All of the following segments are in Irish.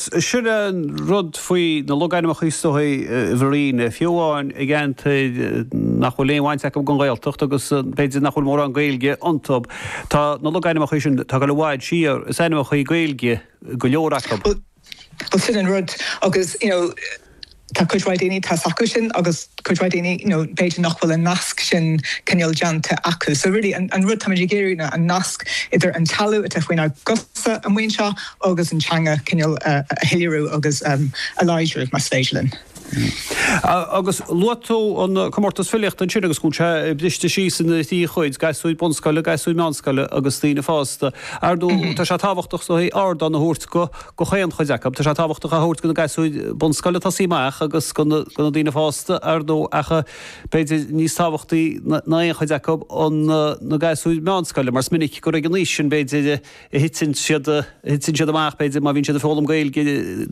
Sin an rud faoi na logainmneacha is dóigh, i bhfírinne, fiú amháin i gceantair nach bhfuil aon bhaint acu den Ghaeltacht agus b'fhéidir nach bhfuil mórán Gaeilge iontu, tá na logainmneacha sin tagtha i bhfad siar, is ainmneacha Gaeilge go leor acu. Bhuel, sin an rud agus, you know. Tá cuid mhaith daoine a bhfuil a fhios acu sin agus cuid mhaith daoine nó b'fhéidir nach bhfuil an nasc sin cineál déanta acu. So really an rud táimid ag iarraidh ná an nasc idir an teallaigh atá faoinár gcosa amuigh anseo agus an teanga cineál a shoiléiriú agus a láidriú más féidir linn. Agus luaigh tú an comórtas filíochta ansin agus go bhfuil sé briste síos ina thrí chuid, gasúir bunscoile, gasúir meánscoile agus daoine fásta. Ar ndóigh tá sé tábhachtach ardán a thabhairt go go chaon chuid acu. Tá sé tábhachtach a thabhairt go na gasúir bunscoile atá ag tosaí amach agus go na daoine fásta, ar ndóigh, ach b'fhéidir níos tábhachtaí ná aon chuid acu, na gasúir meánscoile, mar is minic gur ag an aois sin, b'fhéidir, a thiteann siad amach, b'fhéidir, má bhíonn siad ag foghlaim Gaeilge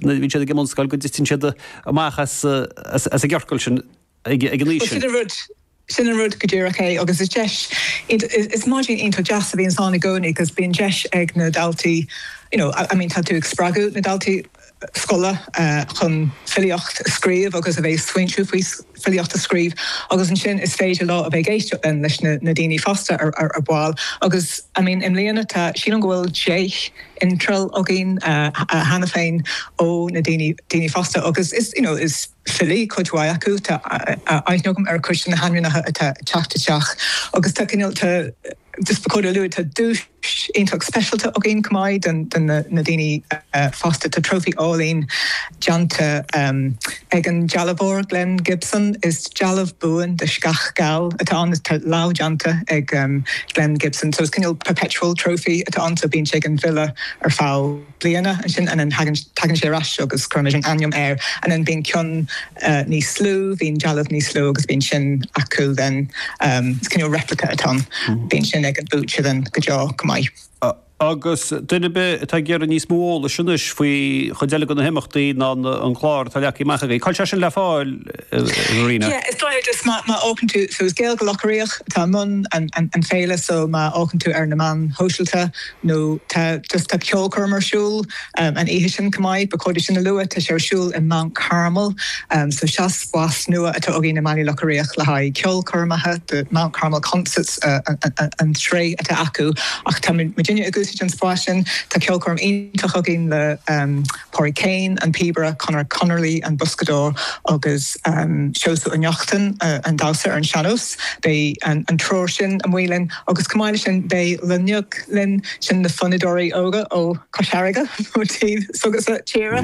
nuair a bhíonn siad ag an mbunscoil, go dtiteann siad amach as an gciorcal sin. ag an aois sin. Sin an rud go díreach é agus is deis, is maidin iontach deas a bhíonns ann i gcónaí agus bíonn deis ag na daltaí you know, I mean tá tú ag spreagadh na daltaí scoile chun filíocht a scríobh agus a bheith ag smaoineamh faoi filíocht a scríobh agus ansin is féidir leo a bheith ag éisteacht then leis na daoine fásta ar ball agus I mean i mbliana tá, sílim go bhfuil deich n-iontráil againn cheana féin ó na daoine fásta agus is, you know, is. filí, cuid mhaith acu, tá aithne agam ar chuid de na hainmneacha atá ag teacht isteach agus tá cineál, tá, just ba chóir a lua, tá duais iontach speisialta againn chomh maith don, do na, na daoine fásta, tá trófaí álainn déanta ag an dealbhóir Glen Gibson, is dealbh buan de sceach gheal atá ann, atá lámhdhéanta ag Glen Gibson, so is cineál perpetual trophy atá ann, so bíonn sé ag an bhfile ar feadh. bliana. And then tagann sé ar ais agus cuirimid an ainm air. And then bíonn ceann níos lú, bíonn dealbh níos lú agus bíonn sin acu then is cineál replica atá ann. Bíonn sin ag an mbuaiteoir then go deo go maith. Agus duine ar bith atá ag iarraidh níos mó eolais anois faoi chuile cheann de na himeachtaí ná an clár atá leagtha amach againn, cá bhfuil sé sin le fáil, Verena? Yeah, is dóigh just má théann tú, so is Gaeilge Locha Riach atá i mbun an féile so má théann tú ar na meáin shóisialta, nó tá ceolchoirm ar siúl an oíche sin chomh maith, ba chóir dom sin a lua, tá sé ar siúl i Mount Carmel, so seo spás nua atá againn i mBaile Locha Riach le haghaidh ceolchoirmeacha, the Mount Carmel Concerts an tsraith atá acu, ach tá muidinne ag úsáid an spáis sin, tá ceolchoirm iontach againn le Pádraic Keane, an píobaire, Conor Connolly, an boscadóir, agus Seosamh Ó Neachtain, an damhsóir ar an sean-nós. Beidh an triúr sin amuigh linn agus chomh maith leis sin beidh Luinneach linn, sin na fonnadóirí óga ó Chois Fharraige, ó taobh s'agatsa tíre,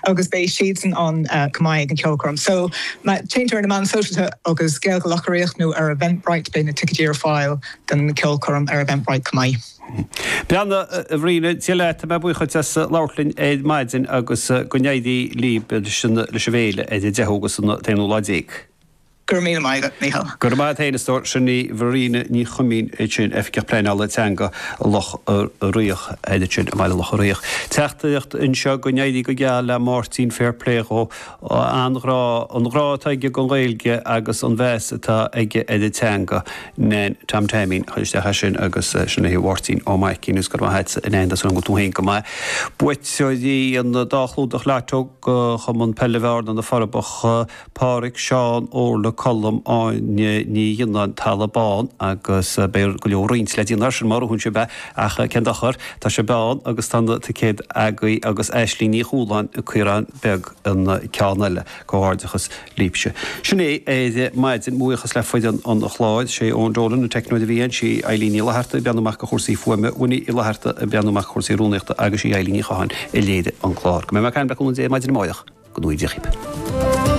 agus beidh siadsan ann chomh maith ag an cheolchoirm. So, má téann tú ar na meáin sóisialta agus Gaeilge Locha Riach nó ar Eventbrite beidh na ticéidí ar fáil don cheolchoirm ar Eventbrite chomh maith. Verena, Dia leat, tá mé buíoch duit as labhairt linn ar maidin agus go n-éirí libh leis an bhféile ar an 10ú agus an t-aonú lá déag. Go raibh míle maith agat, Mícheál. Go raibh maith a't fhéin a stór, sin í Verena Ní Chuimín ansin, Oifigeach Pleanála Teanga Locha Riach ansin i mBaile Locha Riach. Teachtaireacht anseo, go n-éirí go geal le Máirtín, fair play dhó, an-ghrá, an grá atá aige don Ghaeilge agus an meas atá aige ar an teanga. Nain Tom Taimín a chuir isteach é sin agus sin le Máirtín Ó Maicín, is go raibh maith a't a Nain, tá súil agam go bhfuil tú féin go maith. Buaiteoirí an dá chlúdach litreach ó Chumann Peile Bhearna, Na Forbacha, Páraic, Seán, Órla, Colm, Áine Ní Ghionnáin, Tamhnach Bán agus beidh go leor roinnt le déanamh ar sin mar a thuigeann sibh é ach cén dochar, tá sibh ann agus tá na ticéid agaibh agus Aisling Ní Chualáin, Caorán Beag an ceann eile. Comhghairdeachas libhse. Sin é ar maidin. Mo bhuíochas le foireann an chláir. Sé Eoin Dolan an teicneoir a bhí ann, sí Eilín Ní Fhlaithearta a bhreathnaigh amach do chúrsaí fuaime, Winnie Uí Fhlaithearta a bhreathnaigh amach do chúrsaí rúnaíochta agus sí Eilín Ní Chatháin a léirigh an clár. Go mbeidh mé ar ais ar an Bheacán Beag an 11 maidin amárach. Go ngnóthaí Dia dhíobh.